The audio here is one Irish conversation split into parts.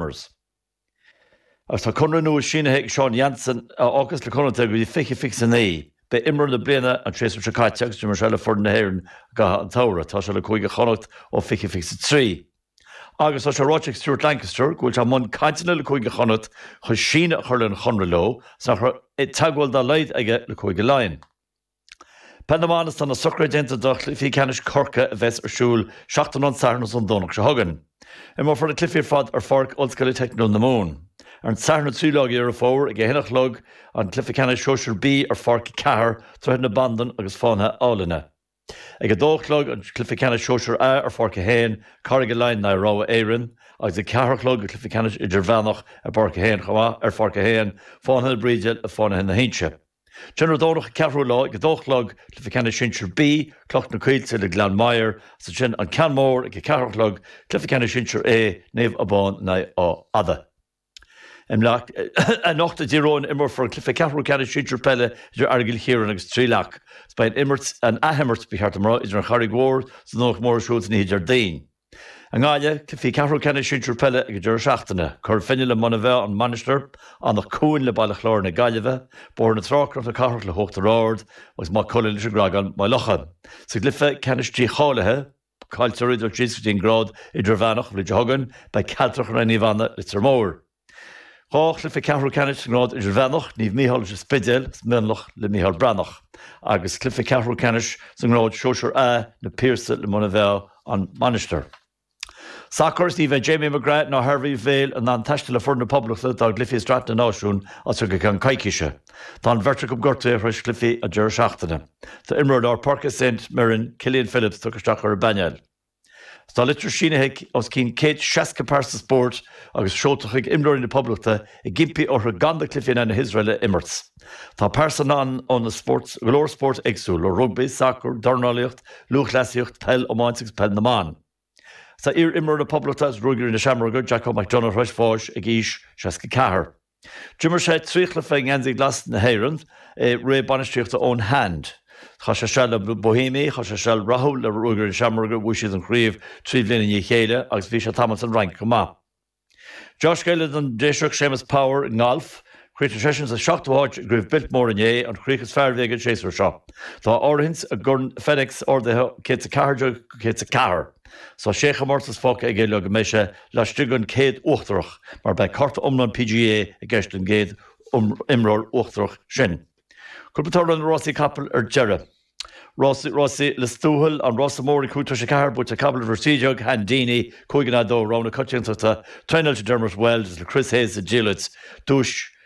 Customers. Agus tá conradh nua sínithe ag Sean Jansen, a fhágfas le Connachta go dtí 2029. Ba é imreoir na bliana an séasúr seo caite agus d'imir sé le foireann na hÉireann i gcaitheamh an tsamhraidh. Tá sé le Cúige Chonnacht ó 2023. Agus tá sé ráite ag Stuart Lancaster go bhfuil sé i mbun cainteanna le Cúige Chonnacht chun síneadh a chur lena chonradh leo agus nach raibh teagmháil dá laghad aige le Cúige Laighean. Peil na mBan Is tá na socruithe déanta do Chluichí Ceannais Chorca a bheas ar siúl seachtain ón Satharn agus ón Domhnach seo chugainn. Imreofar na cluichí ar fad ar pháirc Ollscoile Teicniúil na Mumhan. Ar an Satharn 3 lá Dheireadh Fómhair ag a 1 a chlog an cluiche ceannais Shóisir B ar pháirc 4 Droichead na Bandan agus Fánaithe na hAighlinne. Ag 2 a chlog an cluiche ceannais Shóisir A ar pháirc 1, Carraig Uí Leighin in aghaidh Rogha Éireann, agus ag 4 a chlog an cluiche ceannais Idirmheánach ar bpáirc 1 chomh maith, ar pháirc 1, Fánaithe na Bríde le Fánaithe na hInse. Ansin ar an Domhnach, 4ú lá, ag 2 a chlog, cluiche ceannais sinsir B, Cloch na Coillte le Gleann Maghair, is ansin An Ceann Mór ag 4 a chlog, cluiche ceannais sinsir A, Naomh Abán in aghaidh Áth Fhada. Anocht i dTír Eoghain imreofar an cluiche ceathrú ceannais sinsir peile idir Aireagal Chiaráin agus Trí Leac. Is beidh an athimirt, ba cheart a rá, idir an Charraig Mhór is an Domhnach Mór ar siúl ansin oíche Déardaoin. I nGaillimh, cluichí ceathrú ceannais sinsir peile ag an deireadh seachtaine, Cora Finne le Muine Mheá, An Mhainistir, Anach Cuain le Baile Chláir na Gaillimhe, Bóthar na Trá Cnoc na Cathrach le hUachtar Ard agus Maigh Cuilinn leis an gCreagán, Maigh Locha. Sa gcluiche ceannais dícháilithe, cailliteoirí ag dul síos go dtí an grád idirmheánach, an bhliain seo chugainn, beidh An Chealtrach in aghaidh Naomh Anna, Leitir Móir. Dhá chluiche ceathrú ceannais sa ngrád idirmheánach, Naomh Micheál is An Spidéal is Mionlach le Micheál Breathnach, agus cluiche ceathrú ceannais sa ngrád Sóisear A, Na Piarsaigh le Muine Mheá, An Mhainistir. Sacar, Ní bheidh Jamie McGrath ná Harvey Vale in ann taisteal le foireann na Poblachta dá gcluichí i Sraith na Náisiún as seo go ceann coicíse. Tá an bheirt acu gortaithe tar éis chluichí an deireadh seachtaine. Tá imreoir lár páirce Saint Mirren, Killian Phillips, tugtha isteach ar an bpainéal. Tá litir sínithe ag os cionn céad seasca pearsa spóirt agus seolta chuig imreoirí na Poblachta ag impí orthu gan na cluichí in aghaidh na hIosrael a imirt. Tá pearsana ann ó na spóirt, go leor spóirt éagsúla, ó rugbaí, sacar, dornálaíocht, lúthchleasaíocht, peil, iomáint agus peil na mban. Tá iar-imreoir na Poblachta agus Ruagairí na Seamróige, Jacko McDonagh, tar éis bháis ag aois seasca ceathair. D'imir sé trí chluiche i ngeansaí glas na hÉireann i ré bainistíochta Eoin Hand. Chaith sé seal le Bohemians, chaith sé seal rathúil le Ruagairí na Seamróige, bhuaigh siad an chraobh trí bhliain i ndiaidh chéile, agus bhí sé tamall san Fhrainc chomh maith. Deá-scéala don Déiseach Séamus Power i ngalf, chríochnaigh seisean sa seachtú háit i gCraobh Biltmore inné, an chríoch is fearr a bhí aige an séasúr seo. Tá a rangú i gCorn FedEx ardaithe ó 114 go 104. Tá sé chomórtas fágtha aige le go mbeidh sé laistigh den chéad uachtarach, mar beidh cárta iomlán PGA i gceist don gcéad imreoir uachtarach sin. Cúpla toradh ar na rásaí capall ar deireadh. Rás Rásaí Lios Tuathail, An Rása Mór ag cúig tar éis a ceathair, buaite ag capall uimhir 13, Hand Deeny, 5 in aghaidh 2, rogha na coitiantachta, traenáilte ag Dermot Weld agus le Chris Hayes sa diallait, duais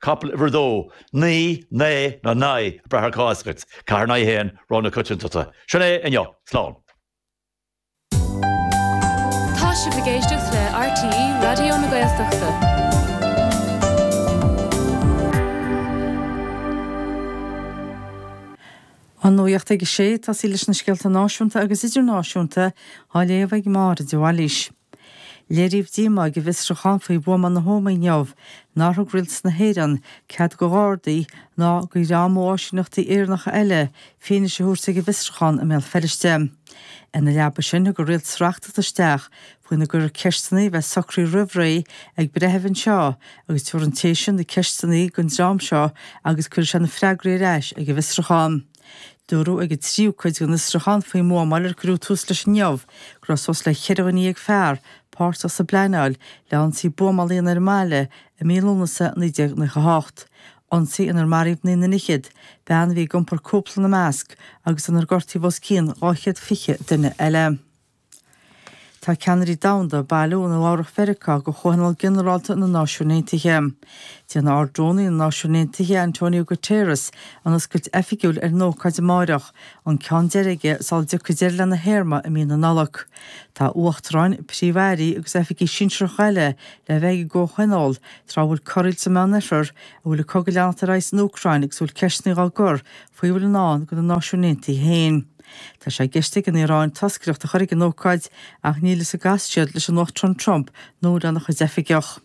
capall uimhir a dó, naoi, nae, nó nigh, ag brath ar cá as dhuit, ceathair in aghaidh a haon, rogha na coitiantachta. Sin é, inniu. Slán. Tá sibh ag éisteacht le RTÉ Raidió na Gaeltachta. An nuacht ag 6, tá sibh leis na scéalta náisiúnta agus idirnáisiúnta á léamh ag Máire de Bhailís. Léiríodh díomá ag an bhfiosrúchán faoi bhuama na hÓmaí inniu nár thug rialtas na hÉireann cead do ghardaí ná do dhream ó áisíneachtaí Éireannacha eile fianaise a thabhairt ag an bhfiosrúchán i mBéal Feirste. Ina leaba sin, thug an rialtas reachtaíocht isteach faoina gcuirfí ceisteanna a bheadh socraithe roimh ré ag breitheamh anseo agus go gcuirfeadh an té sin na ceisteanna ar an dream seo agus go gcuirfeadh sé na freagraí ar ais ag an bhfiosrúchán. Dúradh ag an tríú cuid den fhiosrúchán faoin mbuamáil ar cuireadh tús leis inniu go raibh suas le ceithre dhuine dhéag fear páirteach sa bpleanáil le hionsaí buamála ann ar an mbaile i mí Lúnasa 1998, ionsaí inar maraíodh naoi nduine fhichead, bean a bhí ag iompar cúpla ina measc, agus inar gortaíodh os cionn 220 duine eile. Tá ceannairí domhanda, ag bailiú i Nua-Eabhrac Mheiriceá do Chomhthionól Ginearálta na Náisiún Aontaithe. Déanfaidh Ard-Rúnaí na Náisiún Aontaithe, Antonio Guterres, an oscailt oifigiúil ar an ócáid amáireach, an ceann deiridh aige sula dtiocfaidh deireadh lena théarma i mí na Nollag. Tá uachtaráin, príomh-airí agus oifigigh sinsearacha eile le bheith ag an gcomhthionól tráth a bhfuil corraíl sa Meánoirthear, a bhfuil an cogadh ag leanacht ar aghaidh san Úcráin agus a bhfuil ceisteanna á gcur faoi a bhfuil i ndán do na Náisiúin Aontaithe féin. Tá sé i gceist ag an Iaráin toscaireacht a chur ag an ócáid ach níl fhios an gcasfaidh siad leis an Uachtarán Trump nó lena chuid oifigeach.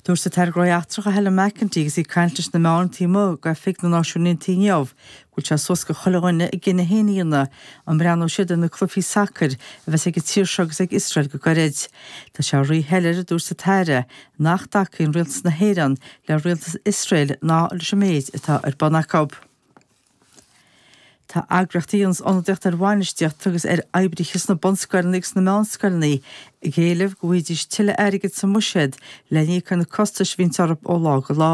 Dúirt an tAire Gnóthaí Eachtracha Helen McEntee agus í ag caint leis na meáin taobh amuigh d'oifig na Náisiún Aontaithe inniu go bhfuil sé suas go chuile dhuine a gcinneadh féin a dhéanamh an mbreathnóidh siad ar na cluichí sacair a bheas ag an tír seo agus ag Iosrael go gairid. Tá sé rí-shoiléir, a dúirt an tAire, nach dtacaíonn Rialtas na hÉireann le Rialtas Iosrael ná leis an méid atá ar bun acu. Tá eagraíochtaí a dhéanas ionadaíocht ar bhainistíocht agus ar oibrithe sna bunscoileanna agus sna meánscoileanna ag éileamh go bhfaighidís tuilleadh airgid sa mbuiséad le híoc ar na costais a bhíonn orthu ó lá go lá.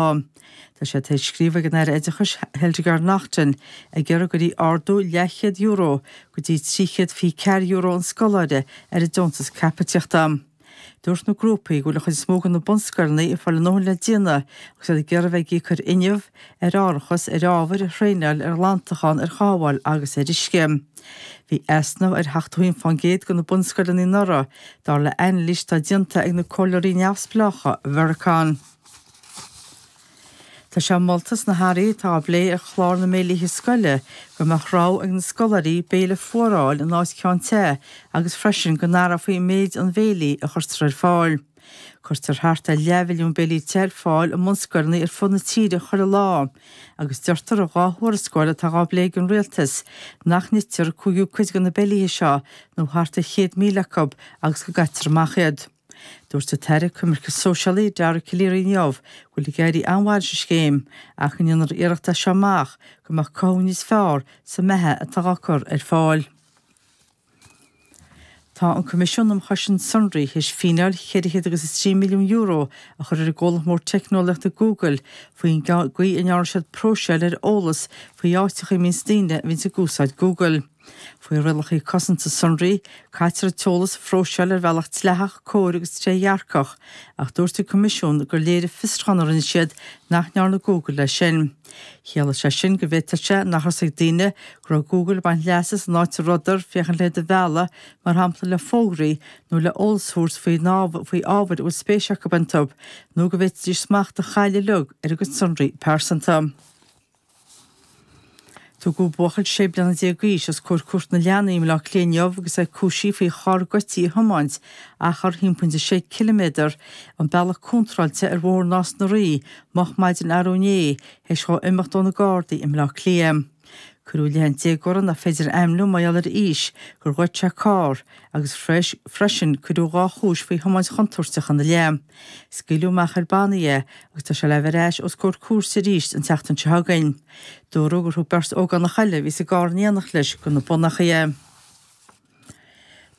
Tá siad tar éis scríobh ag an Aire Oideachais Hildegarde Naughton ag iarraidh uirthi ardú leathchéad euro go dtí trí chéad fiche ceathair euro an scoláire ar an deontas caipitíochta. Dúirt na grúpaí go bhfuil an chuid is mó de na bunscoileanna ag fáil a ndóthain le déanamh agus iad ag iarraidh a bheith ag íoc ar fhuinneamh, ar árachas, ar ábhair, ar thraenáil, ar ghlantachán, ar chothabháil agus ar uisce. Bhí easnamh ar 71% de na bunscoileanna anuraidh, dar le hainilís atá déanta ag na comhairleoirí neamhspleácha Vircon. Tá sé molta sna hathruithe atá á bplé ar Chlár na mBéilíthe Scoile go mbeadh rogha ag na scoláirí béile fuar a fháil in áit ceann te agus freisin go n-athrófaí méid an bhéilí a chuirtear ar fáil. Cuirtear thart ar leathmhilliún béilí te ar fáil i mbunscoileanna ar fud na tíre chuile lá agus deirtear i dhá thuarascáil atá á bplé ag an Rialtas nach n-itear cúigiú cuid de na béilíthe seo nó thart ar chéad míle acu agus go gcaitear amach iad. Dúirt an tAire Coimirce Sóisialaí, Dara Calleary inniu go bhfuil ag éirí an-mhaith leis an scéim ach go ndéanfar iarracht as seo amach go mbeadh cothú níos fearr sa mbeatha atá á cur ar fáil. Tá an Coimisiún um Chosaint Sonraí théis fíneáil €403 milliún a chur ar an gcomhlacht mór teicneolaíochta Google faoin gcaoi a ndearna siad próiseáil ar eolas faoi áiteacha a mbíonns daoine a bhíonns ag úsáid Google. Faoi rialacha cosanta sonraí, caitear an t-eolas a phróiseáil ar bhealach dleathach, cóir agus trédhearcach, ach dúirt an Coimisiún gur léirigh fiosruchán a rinne siad nach ndearna Google é sin. Chiallaigh sé sin go bhféadfadh sé nach raibh 's ag daoine go raibh Google ag baint leas as an áit a rabhadar féachaint le iad a mhealladh, mar shampla le fógraí nó le eolas a thabhairt faoi ábhair a bhfuil spéis acu iontu, nó go bhféadfaidís smacht a chailleadh uilig ar a gcuid sonraí pearsanta. Tugadh buachaill sé bliana déag d'aois os comhair Cúirt na Leanaí i mBleá Cliath inniu agus é cúisithe faoi charr goidte a thiomáint achar thimpeall is sé ciliméadar an bealach contráilte ar Bhóthar Nás na Ríogh, moch maidin arú inné, théis dhó imeacht ó na Gardaí i mBleá Cliath. Cuireadh i leith an déagóra nach féidir a ainmniú mar gheall ar a aois, gur ghoid sé carr, agus freisin cuireadh dhá chúis faoi thiomáint chontúirteach ina leith. Scaoileadh amach ar bannaí é agus tá sé le bheith ar ais os comhair cúirte arís an tseachtain seo chugainn. Dúradh gur thug beirt ógánach eile a bhí sa gcarr in éineacht leis do na bonnachaí é.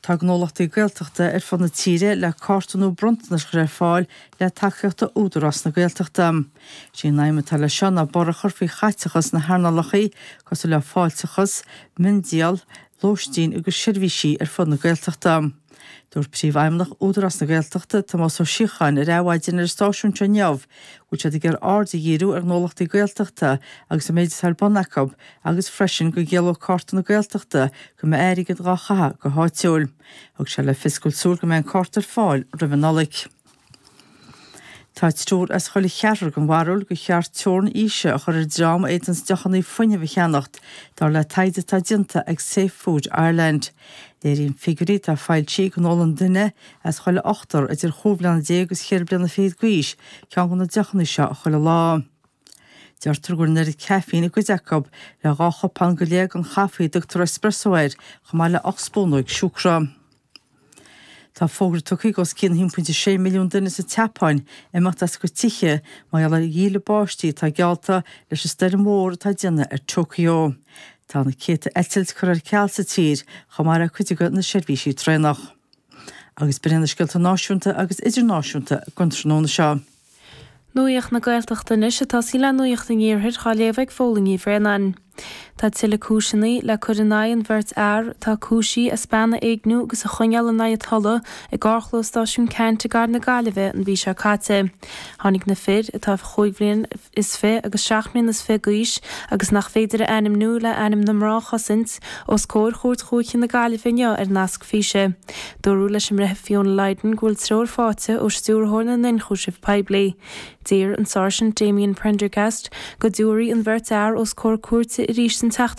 Tá gnólachtaí Gaeltachta ar fud na tíre le cárta nua bronntanais a chur ar fáil le tacaíocht ó Údarás na Gaeltachta. Is é an aidhm atá leis seo ná borradh a chur faoi chaiteachas sna hearnálacha cosúil le fáilteachas, miondíol, lóistín agus seirbhísí ar fud na Gaeltachta. Dúirt Príomhfheidhmeannach Údarás na Gaeltachta, Tomás Ó Síocháin, ar Adhmhaidin ar an stáisiún seo inniu go bhfuil siad ag iarraidh aird a dhíriú ar ghnólachtaí Gaeltachta agus an méid atá ar bun acu agus freisin go gciallódh Cárta na Gaeltachta go mbeadh airgead dhá chaitheamh go háitiúil. Thug sé le fios go bhfuil súil go mbeidh an cárta ar fáil roimh an Nollaig. Tá triúr as chuile cheathrar den bharúil gur cheart teorainn aoise a chur ar an dream a fhéadanns deochanna fuinnimh a cheannacht, dar le taighde atá déanta ag Safe Food Ireland. Léiríonn figiúirí atá foilsithe go n-ólann duine as chuile ochtar idir chúig bhliana déag agus cheithre bliana fichead d'aois ceann de na deochanna seo chuile lá. Deirtear go bhfuil an oiread caffeine i gcuid acu, le dhá chupán go leith den chaife a dtugtar espresso air, chomh maith le hocht spúnóig siúcra. Tá fógra tugtha ag os cionn 1.6 milliún duine sa tSeapáin imeacht as a gcuid tithe mar gheall ar dhíle báistí atá geallta leis an stoirm mhór atá ag déanamh ar Tokyo. Tá na céadta eitilt curtha ar ceal sa tír, chomh maith le cuid de na seirbhísí traenach. Agus b'in iad na scéalta náisiúnta agus idirnáisiúnta don tráthnóna seo. Nuaíocht na Gaeltachta Anois ag tosaí le Nuaíocht an Iarthair á léamh ag Póilín Ní Bhraonáin. Tá tuilleadh cúiseanna le cur in aghaidh an bheirt fhear atá cúisithe as bean a éigniú agus a choinneáil in aghaidh a tola i gcarrchlós Stáisiún Ceannt i gCathair na Gaillimhe an mhí seo caite. Tháinig na fir, atá chúig bhliain is fiche agus seacht mbliana is fiche d'aois agus nach féidir a ainmniú le ainm na mná a chosaint, os comhair Chúirt Dúiche na Gaillimhe inniu ar nasc físe. Dúradh leis an mBreitheamh Fiona Lydon go bhfuil treoir faighte ó Stiúrthóir na nIonchúiseamh Poiblí. D'iarr an Sáirsint Damien Prendergast go dtabharfaí an bheirt fhear os comhair cúirte arís an tseachtain